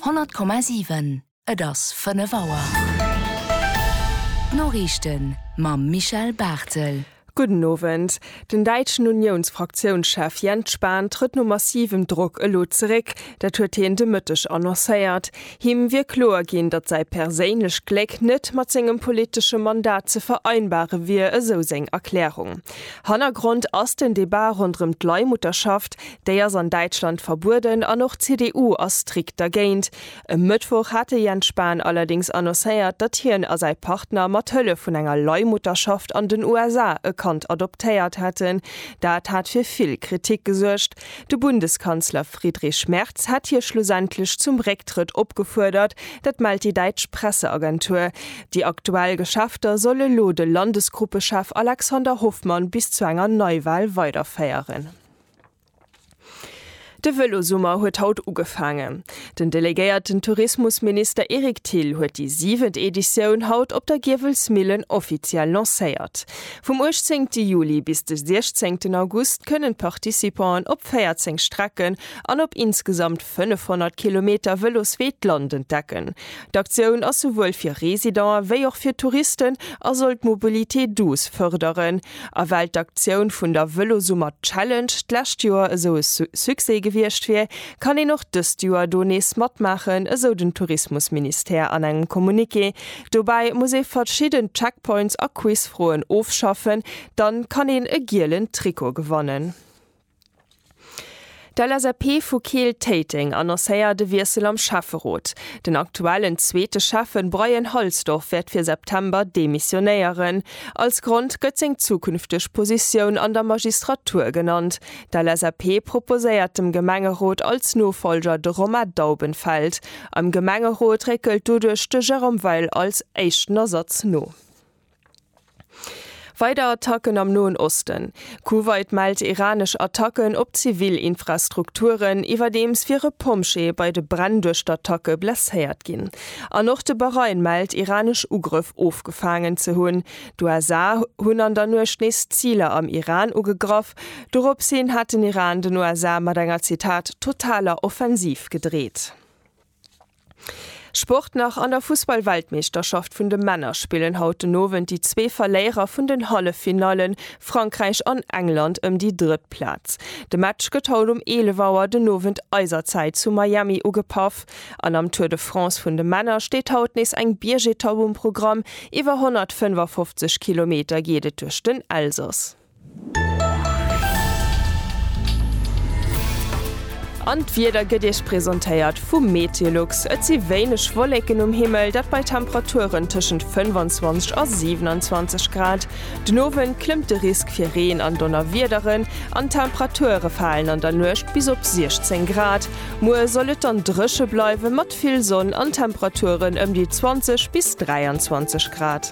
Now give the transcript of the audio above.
100,7 Et ass 5 Auer. D'Noriichten mam Michel Barthel. Gudden Owend. Den däitschen Uniounsfraktiounschef Jens Spahn trëtt no massivem Drock elo zeréck. Dat huet hien de Mëtteg annoncéiert. Him wier kloer ginn, datt säi perséinlecht Gléck net mat sengem politesche Mandat ze vereinbare wier, esou seng Erklärung. Hannergrond ass den Debat ronderëm d'Leihmutterschaft, Déi ass an Däitschland verbueden an och d'CDU ass strikt dergéint. E Mëttwoch hat de Jens Spahn allerdéngs annoncéiert, datt hien a säi Partner mat Hëllef vun enger Leihmutterschaft an den USA e Kand adoptéiert hätten. Dat hat fir vill Kritik gesuergt. De Bundeskanzler Friedrich Merz hätt hie schlussendlech zum Récktrëtt opgefuerdert. Dat mellt déi däitsch Presseagentur. Déi aktuell Geschäfter soll elo de Landesgruppechef Alexander Hoffmann bis zu enger Neiwal weiderféieren. De Vëlosummer huet haut ugefaangen. Den delegéierten Tourismusminister Eric Thill huet déi siwent Editioun haut op der Giewelsmillen offiziell lancéiert. Vum 18 Juli bis de 16 August kënnen d'Participanten op 14 Strecken an op insgesamt 500 Kilometer Vëloswee d'Land entdecken. D'Aktioun ass souwuel fir Residente wéi och fir Touristen a soll d'Mobilité douce fërderen. A well d'Aktioun vun der Vëlosummer Challenge d'lescht Joer esou e Succès gewiescht wier, kann een och dëst Joer do nees matmaachen, esou den Tourismusministère an engem Communiqué. Dobäi muss ee verschidden Checkpoints a Quizfroen ofschaffen, dann kann een e gielen Trikot gewannen. D'LSAP vu Keel-Téiteng annoncéiert e Wiessel am Schäfferot. Den aktuellen zweete Schäffen Bryan Halsdorf wäert fir September demissionéieren. Als Grond gëtt seng zukünfteg Positioun an der Magistratur genannt. D'LSAP proposéiert dem Gemengerot als Nofollger de Romain Daubenfeld. Am Gemengerot réckelt doduerch de Jérôme Weil als éischten Ersatz no. Weider Attacken am Noen Osten, Kuwait mellt iranesch Attacken op zivil Infrastrukturen, iwwerdeems wier e Pompjee bei de Bränn duerch d'Attacke blesséiert ginn. An och de Bahrain mellt iranesch Ugrëff ofgefaangen ze hunn. D'USA hunn an der Nuecht nees Ziler am Iran ugegraff. Doropshin hat den Iran den USA mat enger, Zitat, totaler Offensiv gedreet. Sport nach, An der Fussball-Weltmeeschterschaft vun de Männer spillen haut den Owend déi zwee Verléierer vun den Halleffinaillen, Frankräich an England, ëm déi drëtt Plaz. De Match gëtt haut um 11 Auer den Owend eiser Zäit zu Miami ugepaff. An am Tour de France vun de Männer steet haut nees eng Biergetapp um Programm. Iwwer 155 Kilometer geet et duerch den Elsass. An d'Wieder gëtt Iech presentéiert vum Meteolux. Et si wéineg Wollécken um Himmel, dat bei Temperaturen tëschent 25 a 27 Grad. Den Owend klëmmt de Risk fir Reen an Donnerwiederen an d'Temperature falen an der Nuecht bis op 16 Grad. Muer soll et dann dréche bleiwen, mat vill Sonn an Temperaturen ëm déi 20 bis 23 Grad.